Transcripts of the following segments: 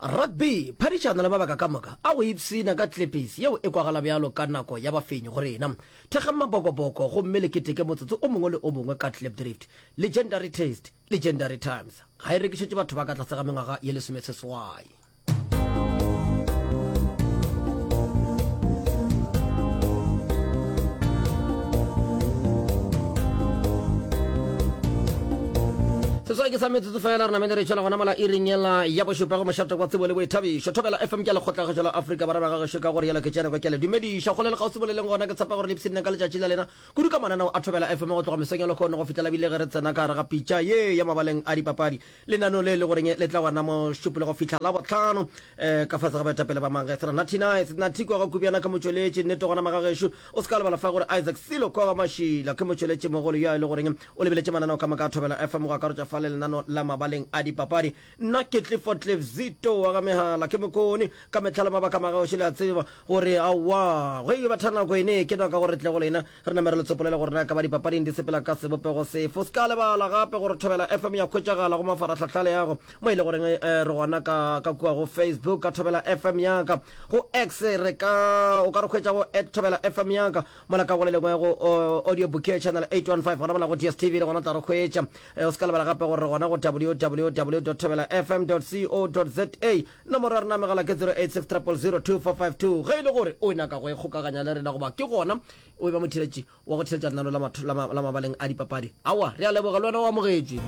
Rugby, phadišano le mabaka ka moka a go ipshina ka tlepesi yeo e kwagala bjalo ka nako ya bafenyi go rena. Thekgeng mabokoboko gomme le keteke motsotso o mongwe le o mongwe ka Klipdrift. Legendary Taste, Legendary Times ga e rekišetše batho ba ka tlase ga mengwaga ye lesomeseswai. setswai ke sa metsotso fela re namele re tšwela gona mola iring yela ya bošupa go mošate kwa tsebo le boithabišo thobela fm ke lekgotlagašo la afrika barwa ba gagešo ka gore yela ke tšeneko ke le dumediša go le le kgausimo le leng gona ke tshepa gore le psirine ka letšatši la lena kudu ka mananao a thobela fm go tloga mesong ya lekgono go fihlela bile ge re tsena ka gare ga pitša ye ya mabaleng a dipapadi lenano le le goreng le tla gona mošupi le go fihla la botlhano um eh, ka fase ga baetapele ba mangge sera natinai senathikwa ga kubjana ke motšweletši nnete gona magagešo o se ka lebala fa gore isaac silo kwa ga mašila ke motšweletši mogolo yo a e le goreng O lebeletše mananeo ka moka a Thobela FM go akarotša fa le lenano la mabaleng a dipapadi. Nna ke Clifford Cliff Zito wa ga Mehala. Ke mokoni ka mehla le mabaka magaoši le a tseba gore aowa ge e ba tha nako ene ke doka gore tle go lena re name re le tsopolele gore na ka ba dipapading di sepela ka sebopego sefe. O se ka lebala gape gore Thobela FM ya hwetšagala go mafarahlahla le yago mo e le goreng re gona ka ka kua go Facebook ka Thobela FM yaka, go X re ka o ka re hwetša go at Thobela FM yaka. Mola ka go le lengwe go Audio Bouquet Channel 815 gona mola go DSTV le gona o tla re hwetša. Eh, o se ka lebala gape gore re gona go www.thobelafm.co.za. Nomoro ya rena ya megala ke 086 000 2452. Ge e le gore o nyaka go ikgokaganya le rena goba ke gona o e ba motheletši wa go theletša lenano la matho- la ma- la mabaleng a dipapadi, aowa, re a leboga le wena o amogetšwe.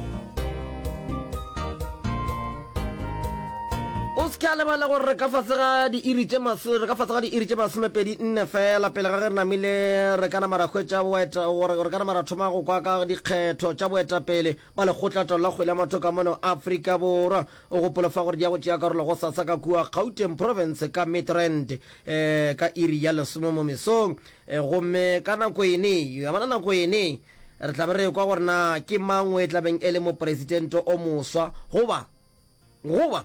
o se ke a lebala gore re ka fase ga diiri tše maso re ka fase ga diiri tše masomepedi nne fela pele ga ge re namile re ka nama ra hwetša boeta gore re ka nama ra thoma go kwa ka dikgetho tša boetapele ba lekgotlatalo la kgwele ya matho ka mono afrika borwa o gopolo fa gore di ya go tšea karolo go sasa ka kua gauteng province ka midrand um eh, ka iri ya lesome mo mesong um gomme ka nako ene yamana nako ene Re tla be re ekwa gore na ke mang o e tla beng e le moporesitente o moswa goba goba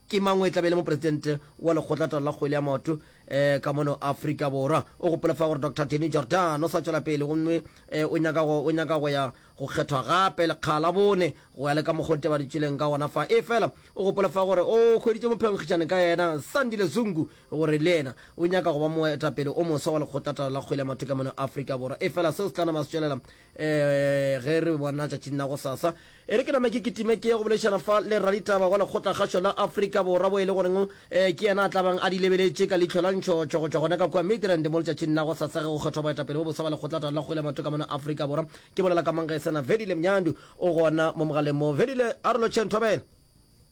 ke mang o e tla be e le moporesitente wa lekgotlatalo la kgwele ya maoto um ka mono Afrika Borwa. O gopole fa gore Doctor Temi Jordan o sa tšwela pele gomme um o nyaka go o nyaka go ya go kgethwa gape lekga la bone go ya le ka mokgwa o tebaditšweleng ka gona fa. Efela o gopole fa gore o hweditše mophenkgišane ka yena Sandile Zungu gore le yena o nyaka go ba moetapele o moswa wa lekgotlatala la kgwele ya mathoka mono Afrika Borwa, efela seo se tla nama se tšwelela um ge re bona tšatšing la gosasa. E re ke name ke kitime ke ye go boledišana fa le raditaba wa lekgotlakgašo la Afrika Borwa, bo e le goreng ke yena a tla bang a di lebeletše ka leihlo la ntšhotšho go tšwa gona ka kua Midrand mo letšatšing la gosasa ge go kgethwa boetapele bo boswa ba lekgotlatala la kgwele ya mathoka mono Afrika Borwa. Ke bolela ka mang ge e se na Vedile Mnyandu, o gona mo mogaleng mo. Vedile, a re lotšheng thobela.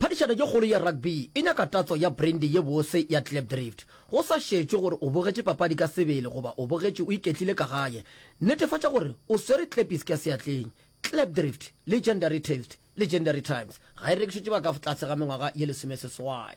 Phadišano ye kgolo ya rugby e nyaka tatso ya brandy ye bose ya Klipdrift. Go sa šetšwe gore o bogetše papadi ka sebele goba o bogetše o iketlile ka gae, netefatša gore o swere klepis ka seatleng. Klipdrift, Legendary Taste, Legendary Times, ga e rekišetšwe ba ka tlase ga mengwaga ye lesomeseswai.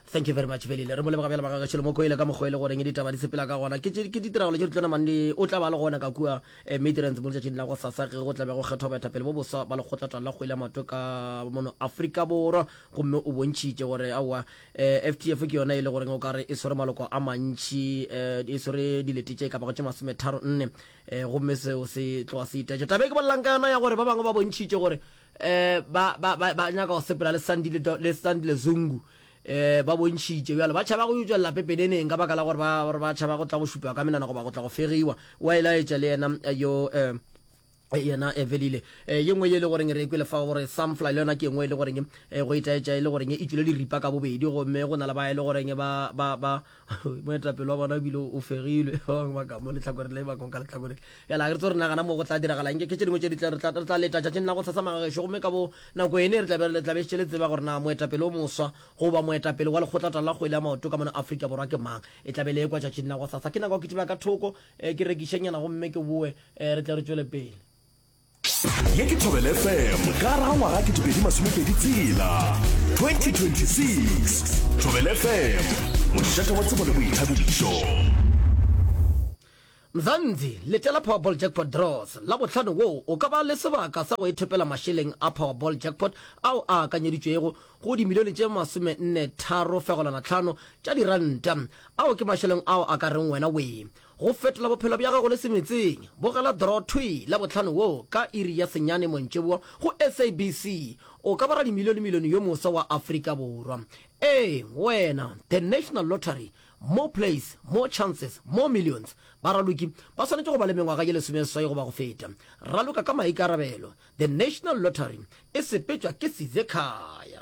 Thank you very much Belile. Re mo leboga bjale magaga tšhelo mo koele ka mokgwa e le goreng ditaba di sepela ka gona. Ke tše- ke ditiragalo tše di tlo namang le o tla ba le gona ka kua eh, Midrans mo letšatšing la go sasa ge go tla be go kgethwa baetapele bo boswa ba lekgotlatala la kgwele ya maoto ka mono Afrika Borwa gomme o bontšhitše gore aowa eh, FTF ke yona e le goreng o ka re e swere maloko a mantši eh, e swere dilete tše ka bago tše masometharo nne eh, gomme seo se tloga se itaetša taba e ke bolelang ka yona ya gore ba bangwe ba bontšhitše gore eh ba ba ba ba nyaka go sepela le Sandi le Do- le Sandi le Zungu eh ba bontšhitše bjalo ba tšhaba go yo tšwelela pepeneneng ka baka la gore ba gore ba tšhaba go tla go šupiwa ka menana goba go tla go fegiwa wa e laetša le yena eh, yo eh Eh, yena evelile eh, ye nngwe ye e le goreng re e kwele fa gore sunfly le yona ke engwe e le goreng eh, go itaetša e le goreng e tswile diripa ka bobedi gomme go na le ba e le goreng ba ba ba moetapele wa bona o bile o fegilwe ba bangwe ba ka mo letlhakoreng le ba kong ka letlhakoreng bjale ga re tse re nagana mo go tla diragala nke ke tše dingwe tše ditle re tla leta tšatšing la go tlhatsa magagešo gomme ka bo nako ene re tlabe le tlabe šetše le tseba gore na moetapele o moswa goba moetapele wa lekgotlata la kgwele ya maoto ka mona afrika borwa ke mang e tlabe le ekwa tšatšing la go tlhatsa ke nako ke diba ka thoko eh, ke rekišenyana gomme ke boe eh, re tle re tšwele pele ye ke thobele fm ka raga ngwaga ke topedi masomepedi tsela 2026 thobele fm mošate wa tsebo le boithabišo mzanzi letela powerball jackpot draws la bohlano woo o ka ba le sebaka sa go ethopela mašeleng a powerball jackpot ao a akanyeditšwego go dimilione tše masome nne tharo fegolwana tlhano tša diranta ao ke mašeleng ao a ka reng wena wee Go fetola bophelo bja gago le semetseng, bogela Draw Thwi Labohlano wo ka iri ya senyane montšeboa go SABC. O ka ba radimilionemilione yo moswa wa Afrika Borwa. Ee, wena! The National Lottery, More plays, more chances, more millions. Baraloki ba swanetše go ba le mengwaga ye lesomeseswai goba go feta. Raloka ka maikarabelo. The National Lottery e sepetšwa ke Sizekhaya.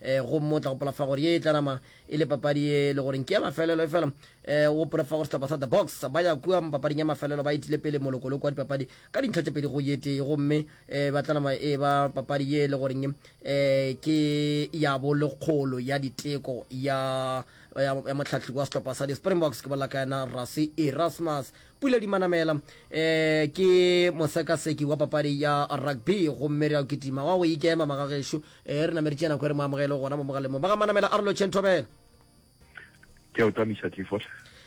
eh, go motla gopola fa gore ye e tla nama e le papadi ye e le goreng ke ya mafelelo e fela um eh, gopole fa gore setlhopha sa the box ba ya kua papading ya mafelelo ba itile pele molokoloko wa dipapadi ka dintlha tse pedi go yetee gomme um eh, ba tla nama e ba papadi ye e le goreng um ke ya bolekgolo ya diteko ya ya motlhatlhi wa setlhopha sa di-springboks ke bolela ka yena rasi erasmus pula di manamela um eh, ke mosekaseki wa papadi ya rugby gomme re ya kitima wa go ikema magagešu e re nameditše nako e re mo amogele gona mo mogalemong ba ga manamela a re lotšheng thobela ke a o tamiša tlifot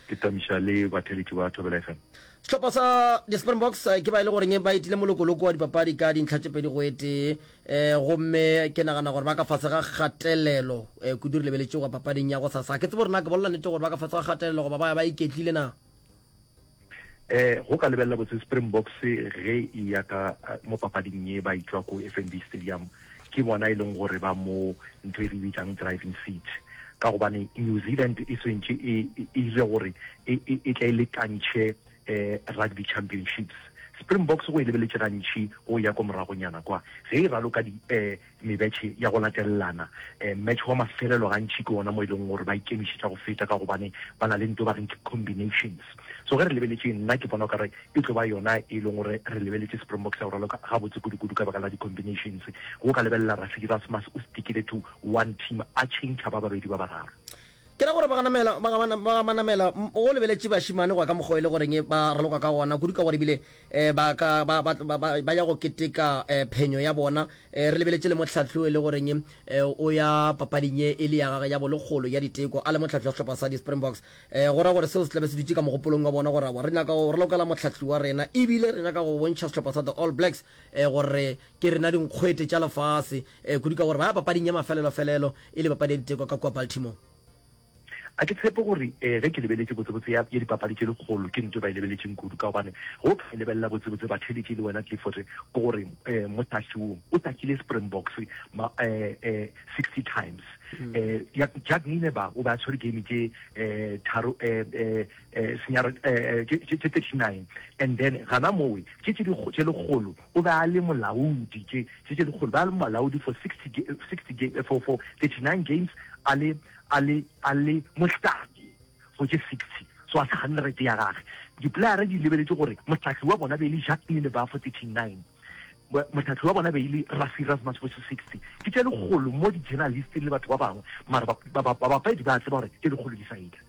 ke tamiša le batheletši ba thobela fm sehlopha sa di-springboks eh, ke ba e le goreng ba etile molokoloko wa dipapadi ka dintlha tše pedi go etee um gomme ke nagana gore ba ka fase ga kgatelelo um eh, kudu re lebeletše go papading ya go sasa ke tsebo rena ke bolela nete gore ba ka fase ga kgatelelo goba ba ya ba iketlile na Eh, go ka lebelela botse Springboks ge e ya ka eh, mo papading ye ba itšwa ko FNB Stadium ke bona e leng gore ba mo ntho e re bitsang driving seat ka gobane New Zealand e swentše e ile gore e, e, e tla e lekantšhe eh, rugby championships Springboks go e lebeletše gantši go ya ko moragonyana kwa ge e raloka di eh, mebetše ya go latelelana. Mmetše wa mafelelo gantši ke wona mo e leng gore ba ikemišetša go feta ka gobane ba na le nto ba reng ke combinations. So ge re lebeletše, nna ke bona o ka re e tlo ba yona e leng gore re lebeletše Springbok sa go raloka gabotse kudu-kudu ka baka la di-combinations. Ge o ka lebelela Rafiki Erasmus o stikile to one team a tšhentšha ba babedi ba bararo. Ke ra gore ba ganamela, ba ga, ba ga manamela go lebeletše bašimane go ya ka mokgwa e le goreng ba raloka ka gona, kudu ka gore ebile ba ka, ba, ba, ba, ba ya go keteka phenyo ya bona. Re lebeletše le mohlahli o e le goreng o ya papading ye e le ya gagwe ya bolekgolo ya diteko, a le mohlahli wa sehlopha sa di-Springboks. Go ra gore seo se tla be se dutše ka mogopolong wa bona gore aowa, re nyaka go ralokela mohlahli wa rena ebile re nyaka go bontšha sehlopha sa the All Blacks gore ke rena dinkgwete tša lefase. Ee, kudu ka gore ba ya papading ya mafelelo-felelo e le papadi ya diteko ka kua Baltimore. A ke tshepe gore ee, ge ke lebeletše botsebotse ya, ya dipapadi tše dikgolo, ke ntwe ba e lebeletšeng kudu, ka gobane ge o ka e lebelela botsebotse, batheeletše, le wena Clifford, ke gore ee, mohlahli wo o takile Springboks ma, ee, ee, 60 times. Ee, ya, Jacques Neene ba, o be a tshwere game tše, ee, tharo, ee, ee, ee, senyara, ee, ee, tše, tše, tše 39. And then gana mowe, tše tše dikgo, tše lekgolo, O be a le molaodi tše tše tše dikgolo, be a le molaodi for 60, 60 ga, for, for 39 games, a le, a le, a le mohlaki for tše 60. So a se gane rate ya gage. Diplayara di lebeletše gore mohlaki wa bona be e le Jacques Nienaber for 39, mo, mohlaki wa bona be e le Rassie Erasmus for tše 60. Ke tše dikgolo mo di-journalist le batho ba bangwe, mara ba, ba, ba, babapedi ba a tseba gore tše dikgolo di sa etla.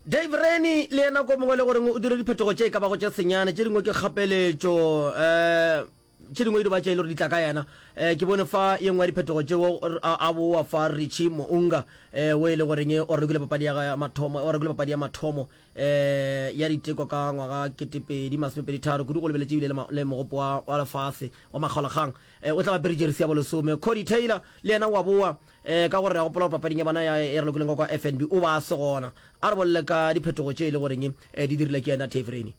Dave Rennie le yena ko mongwe le goreng o dire diphetogo tše e ka bago tše senyane, tše dingwe ke kgapeletšo, um tše dingwe e diba tše e le gore di tla ka yena. Um ke bone fa ye nngwe ya diphetogo tšeo a bowa fa Richie Mounga, um wo e le goreng o rekile papadi ya ya mathomo, o rekile papadi ya mathomo um ya diteko ka ngwaga kete pedi masome pedi tharo, kudu go lebeletše ebile le le mogopo wa wa lefase wa makgaolakgang, um o tla ba apere jeresi ya bolesome. Cody Taylor le yena wa bowa, Ee, ka gore re a gopola gore papading ya bona ya e re lokoleng ka kwa FNB o ba a se gona. A re bolele ka diphetogo tše e le goreng eh, di dirile ke yena Dave Rennie.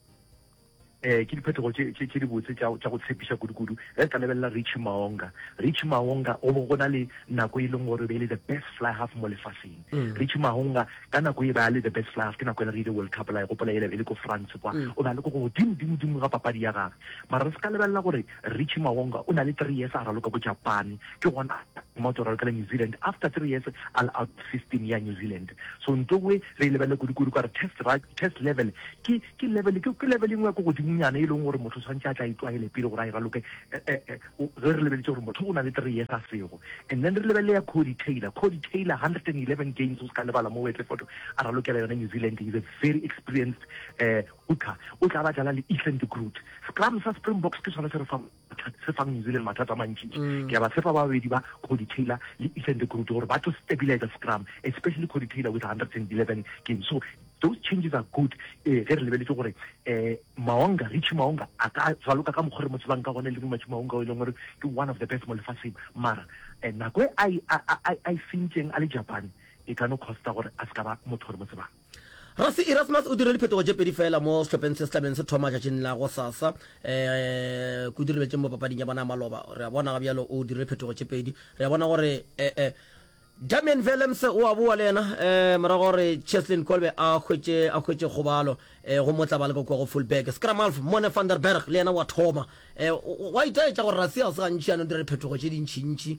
Eh, ke diphetogo tše tše- tše dibotse tša tša go tshepiša kudu-kudu. Ge re ka lebelela Richie Maonga, Richie Maonga go be go na le nako e leng gore e be e le the best fly half mo lefaseng. Richie Maonga ka nako e be a le the best fly half ke nako e le re ile World Cup la e gopola e le e le ko France kwa. O be a le ko godimo dimo dimo ga papadi ya gagwe. Mara re se ka lebelela gore Richie Mawonga o na le three years a raloka ko Japan, ke gona a thoma go tšwa raloka le New Zealand after three years a le out of system ya New Zealand. So nto we re e lebelele kudu-kudu ka gore test ra, test level ke, ke level, ke, ke level engwe ya ko godimonyana e leng gore motho o swantše a tla e tlwaele pele gore a e raloke, eh, eh, eh, ge re lebeletše gore motho o na le three years a sego. And then re lebelele ya Cody Taylor, Cody Taylor hundred and eleven games o se ka lebala mo o etle photo, a ralokela yona New Zealand, he's a very experienced, eh, Hooker o tla ba dlala le Ethan de Groot. Scrum sa Springboks ke sona se re fang mathata, se fang New Zealand mathata a mantšintši. Ke a ba tshepa ba babedi ba, Codie Taylor le Ethan de Groot, gore ba tlo stabilizer scrum, especially Codie Taylor with 111 games. So, those changes are good um ge re lebeletše gore um Maonga, Richie Maonga a ka raloka ka mokgo re mo tsebang ka gona, Lebohi Matšhe Maonga o e leng gore ke one of the best mo lefaseng. Mara um nako e a e, a, a, a e sentšeng a le Japan e ka no costa gore a se ka ba motho re mo tsebang. Rasi Erasmus o dirile diphetogo tše pedi feela mo sehlopheng se se tlabeng se thoma tšatšing la go sasa. Eh, Kudu re bjetše mo papading ya bona ya maloba. Re a bona ga bjalo o dirile phetogo tše pedi. Re a bona gore eh, eh, Damian Willems o a boa le yena eh, morago gore Cheslin Kolbe a hwetše a hwetše kgobalo eh, go motla ba le kwa go full back. Skramalf Mone van der Berg le yena wa thoma. Eh, wa itaetša gore Rasi ga se gantši yana o dire phetogo tše dintšintši.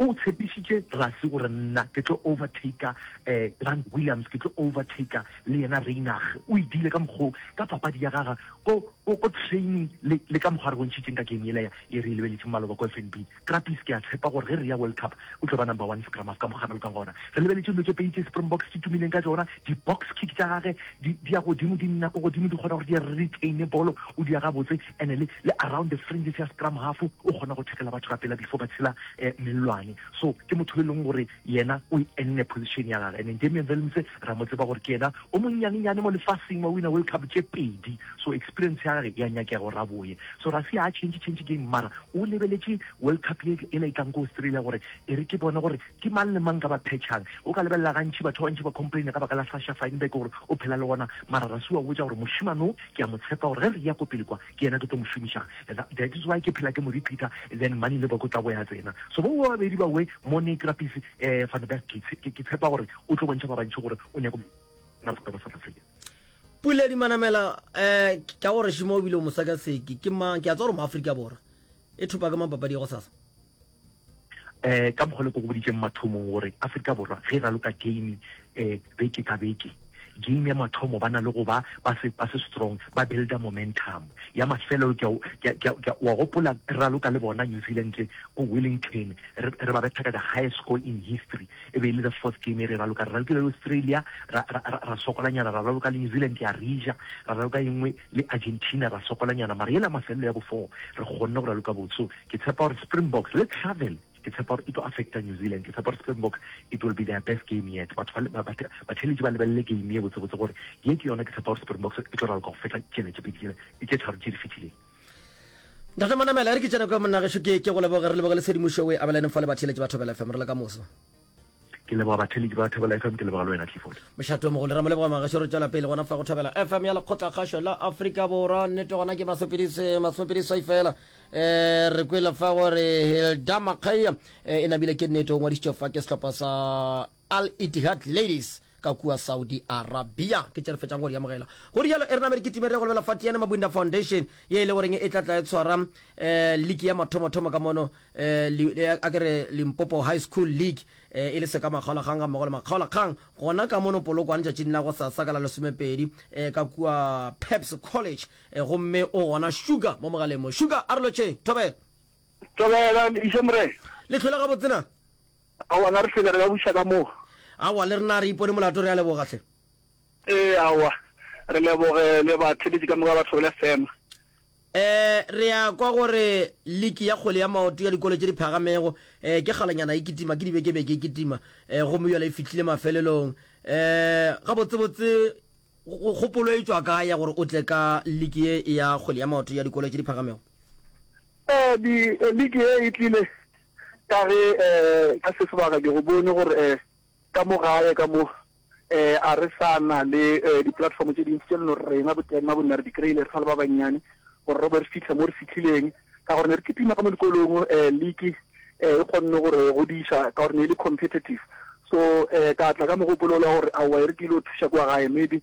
O tshepišitše Rassie gore nna ke tlo overtaker eh, Grant Williams, ke tlo overtaker le yena Reinach. O e diile ka mokgoo, ka papadi ya gaga, ko, ko, ko training le, le ka mokgwa a re bontšhitšeng ka game yela ya, ye re e lebeletšeng maloba ko FNB. Krappies, ke a tshepa gore ge re ya World Cup, o tlo ba number one scrum half ka mokgwa a boloka gona. Re lebeletše dilo tše pedi tše Springboks di tumileng ka tšona, di-box kick tša gagwe di, di ya godimo, di nna ko godimo, di kgona gore di retaine bolo, o di ya gabotse. and le, le around the fringes ya scrum half, o kgona go tackle batho ka pela before ba tshela eh, mellwane. So ke motho yo e leng gore yena o e enne position ya gage, and then Damian Willemse ra mo tseba gore ke yena o monnyanenyane mo lefaseng wa winner World Cup tše pedi, so experience ya gage ya nyakega gore a boye. So ra se a change change game, mara o lebeletše World Cup ye e la itlang ko Australia gore e re ke bone gore Ke mang le mang ka ba phetšhang? O ka lebelela gantši batho ba bantši ba complaina ka baka la Sasha Feinberg gore o phela le gona, mara ra sua botša gore mošemane wo ke a mo tshepa gore ge re eya ko pele kwa ke yena ke tlo mo šomiša. Tha, that is why ke phela ke mo repeater then Mani le Boko tla bo ya tsena. So bo ba babedi ba we mo ne Trappies eh Van Berg ke tshe, ke, ke tshepa gore o tlo bontšha ba bantši gore o nyako na bokgwebo South Africa. Puledi Manamela, eh, ke a go re šimo o bile o mosakaseki. Ke mang? Ke a tseba gore o mo Afrika Borwa. e thopa ka mang papadi ya go sasa um ka mokgwa le ko go boditseng mathomong gore aforika borwa ge e raloka game um beke ka beke game ya mathomo ba na le go ba ba se ba se strong ba builda momentum ya mafelo ke wa gopola raloka le bona new zealand ko wellington re ba betha ka the highest score in history e be e le the fourth game e re raloka re ralokile le australia ra sokolanyana ra raloka le new zealand ya rija ra raloka engwe le Argentina ra sokolanyana mara yela mafelelo ya bo four re kgonne go raloka botso ke tshepa gore Springboks le travel ke tshepa gore e tlo affecta New Zealand ke tshepa gore Springboks it will be their best game yet batho ba ba ba batheletši ba lebelele game ye botse botse gore ye ke yona ke tshepa gore Springboks e tlo raloka go feta tšena tše pedi tšena e tše tharo tše di fetileng Ntate Manamela, re ke tšena kwa monnagešu ke ke go leboge re leboge le tshedimošo o e abelane fa le batheeletše ba Thobela FM re le ka moso. ke leboga batheledi ba thabela fm ke leboga le wena clifford mošato mogolo ra mo leboga magašo re tswela pele gona fa go thabela fm ya lekgotlakgašo la aforika borwa nnete gona ke masopedisai fela um re kwele fa gore hilda makgaia eh, e namile ke nnete o ngwadišitše fa ke sehlopha sa al itihad ladies ka kua Saudi Arabia. Ke tše re fetšang go di amogela. Go rialo Erna Merikitime re ya go lebela Fatiane Mabunda Foundation ye e le goreng e tla tla e tshwara um league ya mathomothomo ka mono um a ke re Limpopo High School League um e le se ka makgaolakgang gammogo le makgaolakgang gona ka mono Polokwane tšatšing la go sasa ka la lesomepedi um ka kua Pabs College um gomme o gona Sugar mo mogaleng mo. Sugar a re lotšheng. Thobela. Thobela, Lediše Morena. Le hlwele gabotse na? Aowa, na re se be re ka buša ka moo? Aowa, le rena re ipone molato. Re a leboga, hle. Ee, aowa. Re leboge le batheletši ka moka ba Thobela FM. Ee, re a kwa gore liki ya kgwele ya maoto ya dikolo tše di phagamego ee ke kgalanyana e kitima, ke dibekebeke e kitima ee gomme bjale e fihlile mafelelong. Ee, gabotsebotse kgopolo e tšwa kae ya gore o tle ka liki ye ya kgwele ya maoto ya dikolo tše di phagamego? Ee, di, liki ye e tlile Ka ge ka se sebaka ke go bone gore ka mo gae ka mo a re sa na le di-platform tše dintsi tše leno rena boteng ba bonna re di kry-ile re sa le ba bannyane gore re be re fitlhe mo re fitlhileng ka gore ne re kitima ka mo dikolong league e kgonne gore godiša ka gore ne e le competitive so ka tla ka mogopolo la gore aowa e re ke ile go thuša kwa gae maybe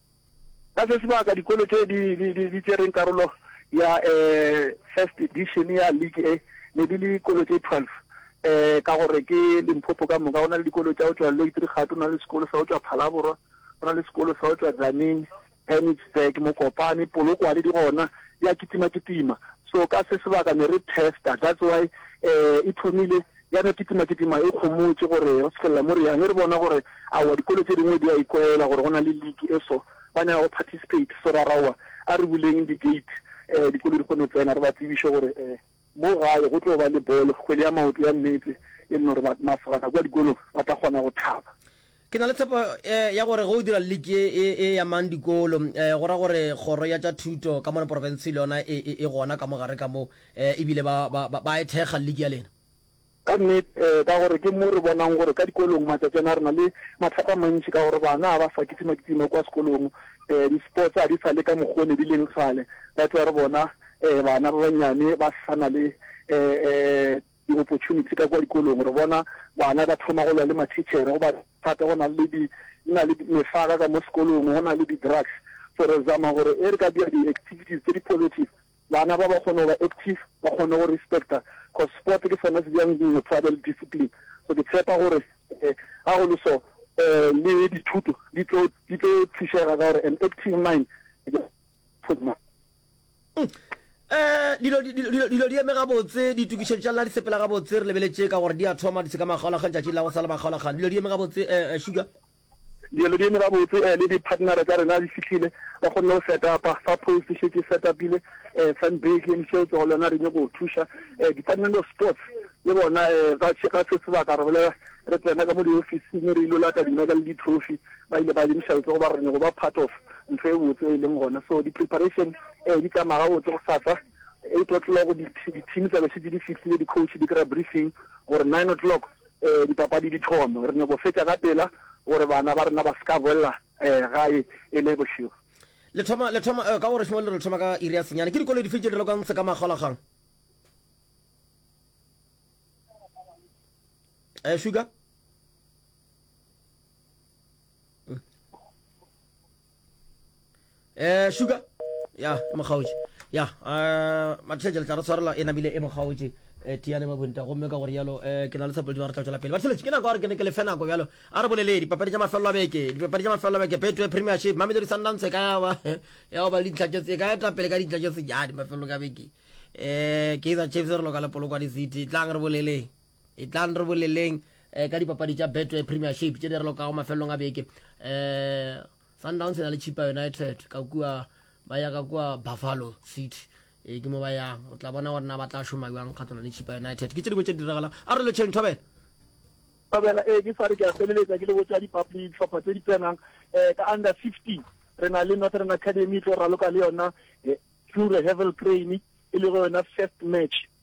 Ka se sebaka, dikolo tše di, di, di, di tšereng karolo ya eh, first edition ya league e ne di le dikolo tše 12 eh, ka gore ke Limpopo ka moka. Go na le dikolo tša go tšwa Leitrigate, go na le sekolo sa go tšwa Phalaborwa, go na le sekolo sa go tšwa Tzaneen, Penitsburg, Mokopane, Polokwane di gona di a kitima-kitima. So ka se sebaka ne re testa, that's why eh, e thomile Ya no kitimakitima e khomotše gore re fihlelela mo re yang. E re bona gore aowa dikolo tše dingwe di a ikwaela gore go na le league e so, ba nyaka go participate. So ra ra aowa a re buleng di-gate dikolo di kgone go tsena, re ba tsebiše gore mo gae go tlo ba le bolo, kgwele ya maoto ya meetse e le gore masogana kua dikolong ba tla kgona go thaba. Ke na le tshepo ya gore ge o dira liki e e amang dikolo, go ra gore kgoro ya tša thuto ka mona porofenseng le yona e e gona ka mo gare ka mo e bile ba ba ba ba e thekga liki ya lena. Ka nnete, ka gore ke mo re bonang gore ka dikolong matšatši ana re na le mathata a mantši ka gore bana ga ba sa kitima-kitima kua sekolong, di-sports ga di sa le ka mokgwa o ne di leng kgale, that wa re bona bana ba bannyane ba sa na le di opportunity ka kwa dikolong re bona bana ba thoma go lwa le ma teacher go ba thata go na le di na le mefaka ka mo sekolong go na le di drugs so re zama gore e re ka dira di activities tse di positive bana ba ba kgone go ba active ba kgone go respecta cause sport ke sona se jang dingwe tshabe le discipline so ke tshepa gore eh, ga go le so eh, le dithuto di tlo thušega ka gore an active mind Eh, dilo, dilo, dilo, dilo di eme gabotse ditokišetšo tša lena di sepela gabotse re lebeletše ka gore di a thoma di se ka makgaolakgang tšatši la go sa le makgaolakgang dilo di eme gabotse eh, eh, sugar dilo di eme gabotse um le di-partnera tsa rena di fitlhile ba kgonne go setapa fa post e šetse e setapile um eh, fanbake le seo tsogo lona re nyako go thuša um eh, department of sports le bona um ga se sebaka re bolela re tsena ka mo diofising re ilo lata dimeka le di-trophy ba ile ba lebiša botse goba re nyoko ba part of ntho e botse e leng gona so di preparation eh di tsamaya gabotse go sasa eight o'clock go di di team tsa be se di fihlile di coach di kra briefing gore nine o'clock eh di papadi di thome re nyoko fetsa ka pela gore bana ba rena ba ska bolla eh gae e le bošego le thoma le thoma eh, ka gore shimo le re thoma ka iri ya senyane ke dikolo di fetše di lokang se ka makgolagang eh sugar mm. eh sugar ya e mokgaotše ya eh, matšhetše le tla re tshwarela e namile e mokgaotše eh, tiane ba bonta gomme ka gore yalo eh, ke na le tshepoledimo re tla tšwela pele batheletše ke nako gore ke ne ke lefe nako bjalo a re bolele dipapadi tša mafelelo a beke dipapadi tša mafelelo a beke betway premiership mamelodi sundance e ka yawa ya go ba le ditlhatšetse e ka eta pele ka ditlhatšetse ja di mafelelo ka beke um kaizer chiefs re loka le polokwane city tlang re boleleng E tlang re boleleng eh, ka dipapadi tša Betway Premiership tše di re lokago mafelelong a beke. Eh, Sundowns e na le Chippa United ka kua ba ya ka kua Buffalo City e ke mo ba yang o tla bona gore na ba tla šoma jwang kgatlana le chipa united ke tše dingwe tše di diragalang a re le chain thobela thobela ee ke sa re ke a feleletsa ke le botsa ditlhopha tse di tsenang um ka under fifteen re na le northern academy e tlo raloka le yona ture hevel crane e le go yona first match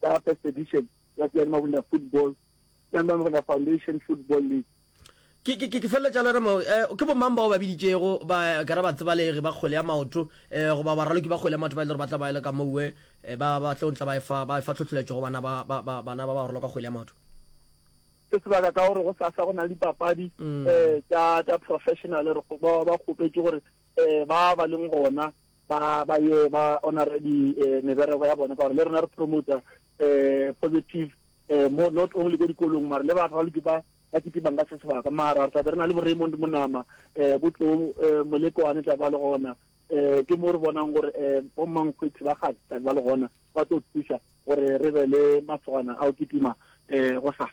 ka first edition ya Tseyani Mabunda Football, Tseyani Mabunda Foundation Football League. Ke, ke, ke feleletša jalo re mo, eh, ke bomang bao ba biditšego ba ka re batsebalegi ba kgwele ya maoto eh, goba baraloki ba kgwele ya maoto ba e le gore ba tla ba e le ka moue eh, ba, ba tlo ntla ba efa, ba efa tlhotlheletšo go bana ba, ba, ba, bana ba bagolo ka kgwele ya maoto? se sebaka ka gore go sasa go na le dipapadi um tsa professional re ba kgopetše gore um ba ba leng gona ba ba ye ba honore di meberego ya bona ka gore le rena re promoter positive mo not only ko dikolong mara le batho ba loke ba ba kitimang ka se sebaka mara re tlabe re na le bo Raymond Monama bo tlo molekwane tla ba le gona um ke mo re bonang gore um bommankgwethi ba gate tla ba le gona ba tlo thusa gore re be le masogana a o kitima um go sasa